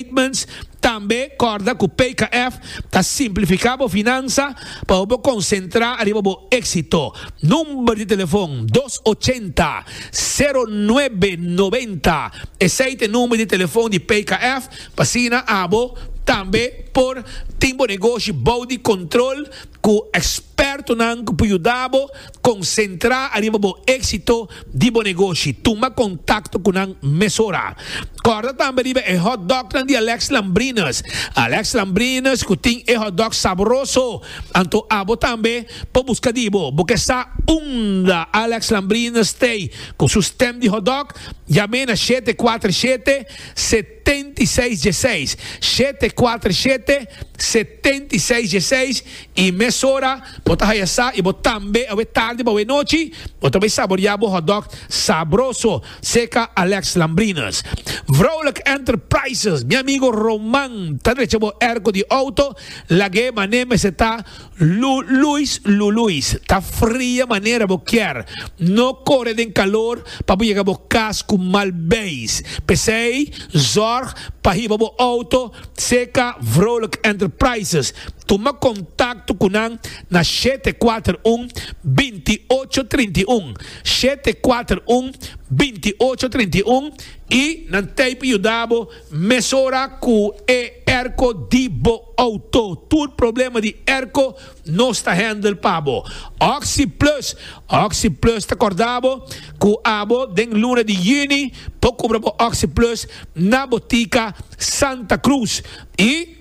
Statements Tambe kòrda ku PKF ta simplifiká bo finansa pa bo por konsentrá riba bo éksito. Number di telefon dos ochenta, sero nuebe noventa, esei ta e number di telefon di PKF pa asina abo tambe por tin bo negoshi bou di kontrol ku ekspertonan ku por yuda bo Konsentrá ariba bo éksito di bo negoshi. Tuma kontakto ku nan mesora. Kòrda tambe riba e hòtdògnan di Alex Lambrinus. Alex Lambrinus ku tin e hòtdòg sabroso. Anto abo tambe por buska di bo. Bo ke sa unda Alex Lambrinus stay ku su stèm di hòtdòg? Yam'é na shete kuater shete, se. setenta i seis djeseis, shete kuater shete, setenta i seis djeseis, i mesora bo ta haya sa i bo tambe awe tardi bo awe nochi bo ta bai saborea bo hotdog sabroso seca Alex Lambrinus Vrouwelijk Enterprises mi amigo Roman ta drecha bo erko di auto lagu'e mané mester ta Lu Luis Lu Luis, ta fria manera bo kier, no kore den kalor pa bo yega bo kas ku mal beis. P'esei zòrg pa hiba bo outo serka Vrolijk Enterprises. Tuma kontakto ku nan na shete kuater un, binti ocho trinta i un, shete kuater un, binti ocho trinta i un, i nan tei pa yuda bo. Mesora cu e airco di bo auto. Tur problema di airco nos ta handle pa bo. Oxy Plus, Oxy Plus ta corda bo cu abo den luna di Juni bo cubra bo Oxy Plus na botica Santa Cruz y.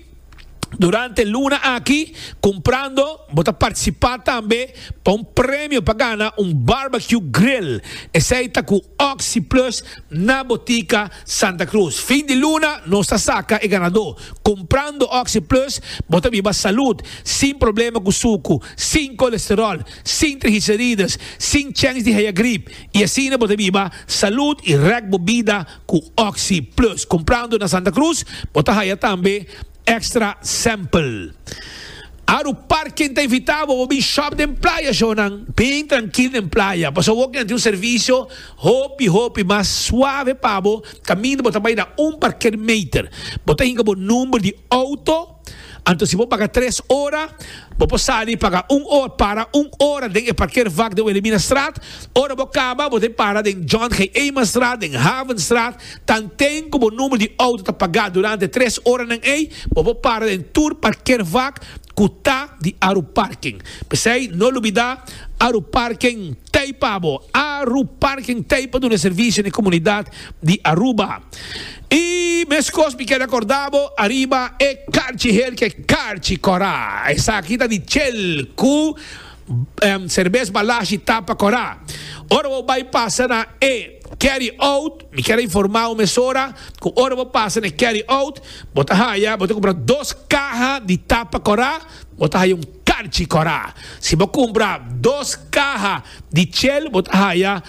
Durante luna aki, Cumprando bo ta participa tambe pa un premio pa gana un barbecue grill esey ta cu Oxy Plus na Botica Santa Cruz. Fin di luna nos ta saca e ganador. Cumprando Oxy Plus bo ta biba salud, sin problema cu sucu, sin colesterol, sin trigicerides, sin chens di haya griep y asina bo ta biba salud y rek bo bida Ku Oxi Plus kumprando na Santa Cruz bo ta haya tambe Extra Sample. Aru par ken ta invitá bo bo bin shòp den playa shownan bin trankil den playa pasobra bo kende tin un servisio hopi hopi mas suave pa bo kaminda bo ta bai na un parker meter. Bo ta hinka bo number di outo. Anto si bo paga tres ora, bo por sali paga un ora, para un ora den e parkeervak den Wilhelminastraat. Ora bo kaba, bo tin para den John G. Eenmanstraat, den Havenstraat. Tanten ku bo number di outo ta pagá durante tres oranan ei, bo por para den tur parkeervak ku ta di Aruparken. P'esei no lubidá, Aruparken t'ei pa bo! Aruparken t'ei pa duna e servisio n'e komunidat di Aruba. I meskos mi keda korda bo ariba e karchi hel ke karchi kora. Esaki ta di chel ku serbes balashi tapa kora. Ora bo bai pasa na e carry out, mi keda informa bo mesora ku ora bo pasa na e carry out bo ta haya, bo ta kumpra dos kaha di tapa kora, bo ta haya un karchi kora. Si bo kumpra dos kaha di chel bo ta haya.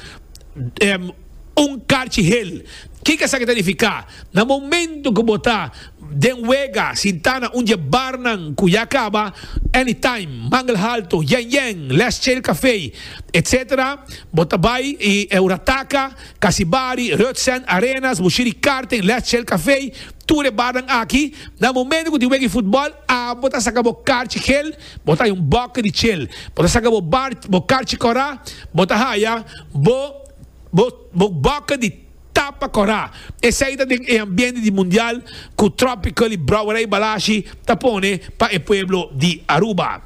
Un karchi hel. Kiko esaki ta nifiká? Na momentu ku bo ta den wega, sintá na un dje barnan ku ya kaba, Anytime, Mangel Halto, Yen Yen, Last Chair Café, etc. Bo ta bai i Eurataka, Kasibari, Reutzen, Arenas, Bushiri Karting, Last Chair Café, tur e barnan aki. Na momentu ku tin wega di futbòl, abo ta saka bo karchi hel, bo ta haya un bòkke di chel. Bo ta saka bo karchi kòrá, bo ta haya bo. Bo boca di tapa corá. Esey ta den e ambiente di mundial cu Tropical y Brouwerij Balashi ta pone pa e pueblo di Aruba.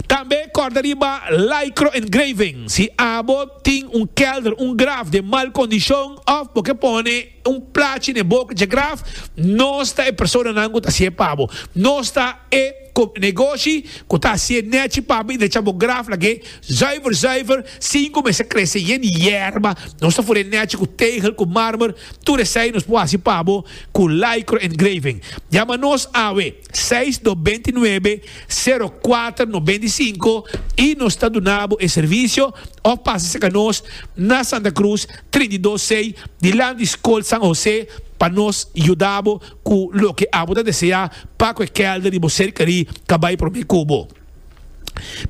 Tambe corda riba Lycro Engraving si abo tin un kelder, un graf den mal condicion of bo ke pone. Un plachi na e boca dje graf, Nos ta e personanan cu ta hacié pa bo. Nos ta e negoshi cu ta hacié nechi pa bo y decha bo graf lagué zuiver zuiver sin cu mester crece yen di yerba. Nos ta furé nechi cu tegel cu marmer. Tur esey nos por haci pa bo cu lycro engraving. Yama nos awe. seis no benti nuebe sero kuater no benti sinku i nos ta duna bo e servisio òf pasa serka nos na Santa Cruz trinta i dos sei dilanti Skol San Hosé pa nos yuda bo ku loke abo ta deseá pa ku e kèlder di bo serkeri ta bai promé ku bo.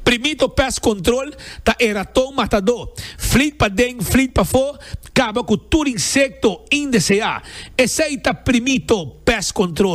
Primito Pest Control ta e raton matadó. Flit paden, flit pafó, kaba ku tur insekto indeseá. Esei ta Primito Pest Control.